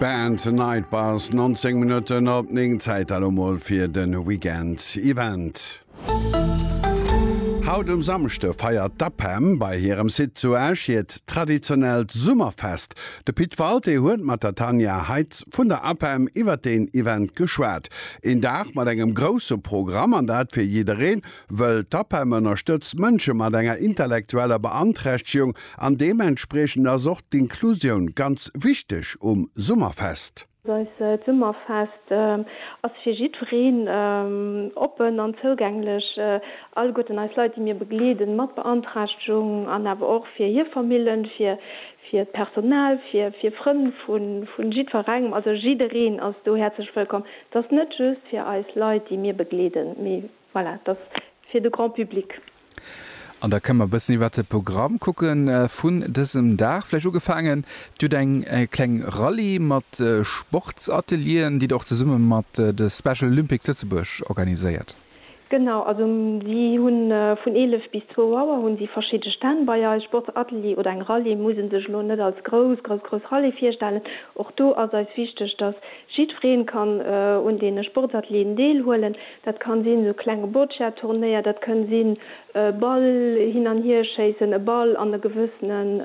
Band Night Bus, 19 Minutten op 9, Zäit elo mol fir de Weekend Event. Haut um Samschde feiert d'APEM bei hirem Site zu Esch hiert traditionellt Summerfest. De Pit Walté huet mat der Tanja Heitz vun der APEM iwwer deen Event geschwat. Een Dag mat engem grousse Programm, an dat fir jiddereen, wëll d'APEM ënnerstëtzt Mënsche mat enger intellektueller Beanträchtegung, An deementspriechend ass och d'Inklusioun ganz wichteg um Summerfest. Eist Summerfest ass fir jiddwereen oppen an zougänglech. Alleguerten eis Leit, déi mir begleeden, mat Beanträchtegung an awer och fir hir Famillen, fir d'Personal, fir Frënn vu jiddwerengem, also jiddereen ass do häerzlech wëllkomm. Et ass net just fir eis Leit, déi mir begleeden, mee voilà, et ass fir de Grand public. An da kënne mer e bëssen iwwert de Programm kucke vun dësem Dag. Vläicht ugefaangen, Dir hutt eng kleng Rallye mat Sportsatelieren, déi Der och zesumme mat de Special Olympics Lëtzebuerg organiséiert. Genau, also si hu vun 11 bis 2 Auer hu si verschidde Stänn bei eis. Sportsatelier oder eng Rallye muss ee sech elo net als grouss, grouss, grouss Rallye virstellen. Och do ass eis wichteg, dass jiddweree kann un deene Sportsatelieren deelhuelen. Dat kann sinn esou klenge Boccia-Turnéier, dat kënn sinn e Ball hin an hier schéissen, e Ball an e gewëssenen,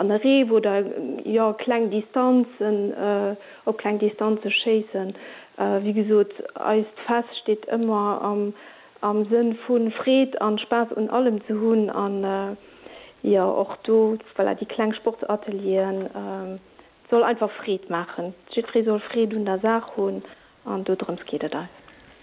an e Reef oder jo kleng Distanzen, op kleng Distanze schéissen. Wéi gesot, eist Fest steet ëmmer am Sënn vu Freed an Spaass un allem ze hunn an jo och do, voilà, déi kleng Sportsatelieren, soll einfach Freed maachen. Jiddweree soll Freed un der Saach hunn. An dodrëms geet et eis.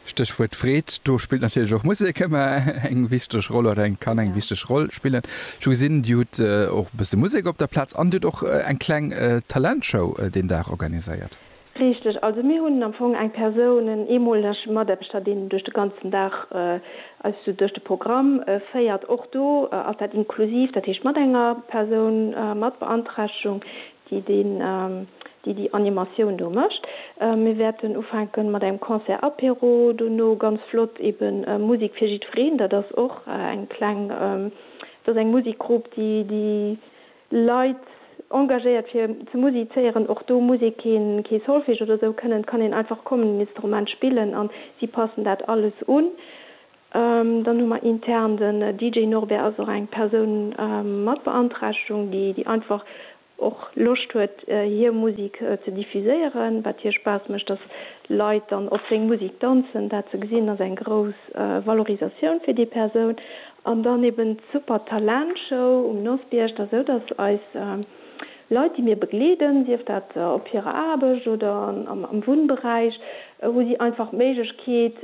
Stéchwuert Freed, do spillt natierlech och Musek ëmmer eng wichteg Roll oder eng kann eng wichteg Roll spillen. Ech hu gesinn, Dir hutt och e bësse Musek op der Plaz an Dir hutt och eng kleng Talentshow deen Dag organiséiert. Richteg. Also mir hunn am Fong eng Persoun, en eemoleg Mataarbechter, deen duerch de ganzen Dag eis esou duerch de Programm féiert. Och do ass dat inklusiv, dat heescht mat enger Persoun mat Beanträchtegung, déi deen, déi déi Animatioun do mécht. Mir wäerten ufänke mat engem Concert Apéro, dono ganz flott eben Musek fir jiddwereen. Dat ass och eng kleng, dat ass eng Musekgrupp, déi déi Leit engagéiert fir ze musizéieren. Och do muss ee keen, kee Solfège oder esou kënnen, et kann een einfach kommen, en Instrument spillen an si passen dat alles un. Dann hu mer intern den DJ Norbert ass och eng Persoun mat Beanträchtegung, déi déi einfach och Loscht huet hir Musik ze diffuséieren, wat hir Spaass mécht, dass Leit dann op seng Musik danzen. Dat ze gesinn ass eng grouss Valorisatioun fir déi Persoun. An dann eben d'Super Talent Show um Nosbierg. Dass esou dass eis Leit déi mir begleeden, sief dat op hirer Aarbecht oder am Wunnberäich, hu si einfach d'Méiglechkeet,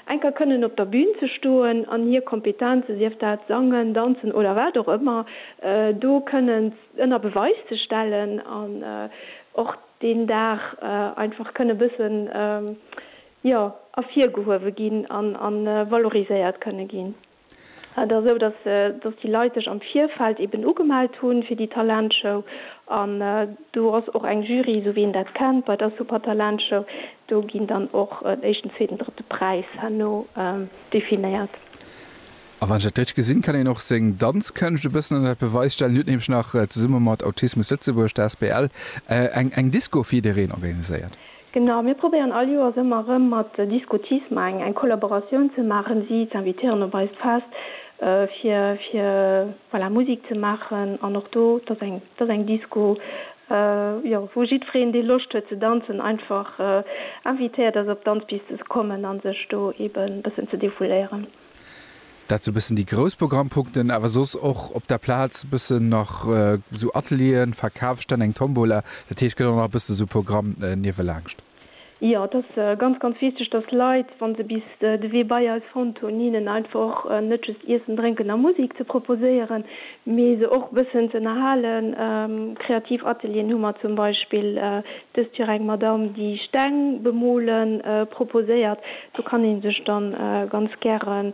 Enker kënnen op der Bühn ze stoen an hir Kompetenzen, sief dat Sangen, Danzen oder wat och ëmmer, do kënnen ënner Beweis ze stellen an och deen Dag einfach kënne bëssen, jo, ervirgehuewe ginn an valoriséiert kënne ginn. Et ass esou, dass déi Leit sech am Virfeld eben ugemellt hu fir déi Talentshow. An do ass och eng Jury, esou wéi een dat kennt bei der Supertalentshow. Do ginn dann och en éischten, zweeten, drëtte Präis herno definéiert. A wann ech dat richteg gesinn, kann een och seng Danzkënscht e bëssen ënnert Beweis stellen. Dir hutt nämlech nach zesumme mat Autismus Lëtzebuerg, der asbl, eng Disco fir jiddereen organiséiert. Genau, mir probéieren all Joers ëmmer erëm mat Discotisme eng eng Kollaboratioun ze maachen, si ze invitéieren op eist Fest, fir fir voilà Musik ze maachen an och do, et ass eng et ass eng Disco, jo wou jiddwereen, dee Loscht huet ze danzen, einfach invitéiert ass op d'Danzpiste ze kommen a sech do eeben e bëssen ze defouléieren. Dat sou bëssen déi grouss Programmpunkten, awer soss och op der Plaz bëssen nach sou Atelieren, Verkafsstänn, eng Tombola. Dat heescht gëtt och nach e bëssen esou Programm niewelaanscht. Jo, et ass ganz, ganz wichteg, dass d'Leit, wa se bis de Wee bei eis fonnt hunn, hinnen einfach och net just Iessen, Drénken a Musek ze proposéieren, mee se och e bëssen ze ënnerhalen. Kreativ Atelieren hu mer zum Beispill Dëst fir eng Madame déi Steng bemole proposéiert. Do kann een sech dann ganz gären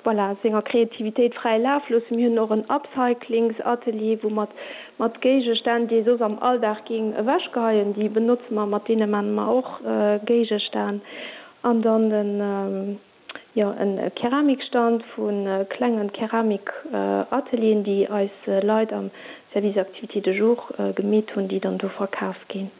voilà senger Kreativitéit fräi Laf loossen. Mir hunn och en Upcyclings Atelier wou mat mat Géigestänn déi ee soss am Alldag géing ewech geheien, déi benotze mer, mat deene man mer och Géigestänn an dann den. Jo, e Keramikstand vu klenge Keramikatelieren, déi eis Leit am Service Activités de jour gemeet hunn, déi dann do verkaf ginn.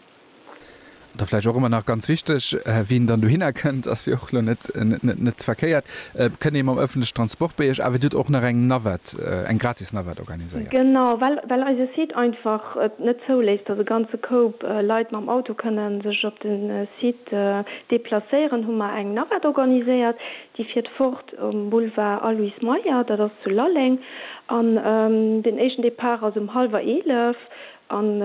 An da vläicht och ëmmer nach ganz wichteg, wien dann dohinner kënnt, ass jo och elo net net verkéiert, kënnt ee mam ëffentlechen Transport bei iech, awer dir hutt och nach eng Navette, eng gratis Navette organiséiert. Genau, well well eise Site einfach et net zouléisst, dass e ganze Koup Leit mam Auto kënnen sech op de Site Deplacéieren hu mer eng Navette organiséiert, déi fiert fort um Boulevard Aloyse Meyer, dat ass zu Lalleng, an den éischten Depart ass um hallwer eelef an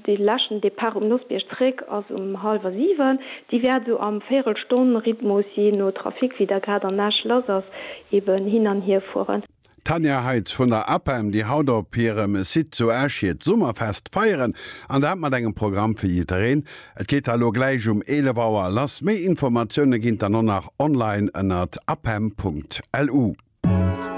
dee leschten Depart um Nossbierg zréck ass um hallwer siwen. Déi wäert sou am Véierelstonn-Rhythmus, jee no Trafic, wéi der grad an Esch lass ass, eben hin an hier fueren. D'Tanja Heitz vun der APEM, déi haut op hirem Site zu Esch hiert Summerfest feieren, an dat mat engem Programm fir jiddereen. Et geet da lo gläich um 11 Auer lass. Méi Informatioune ginn d'Anno nach online ënnert apem.lu.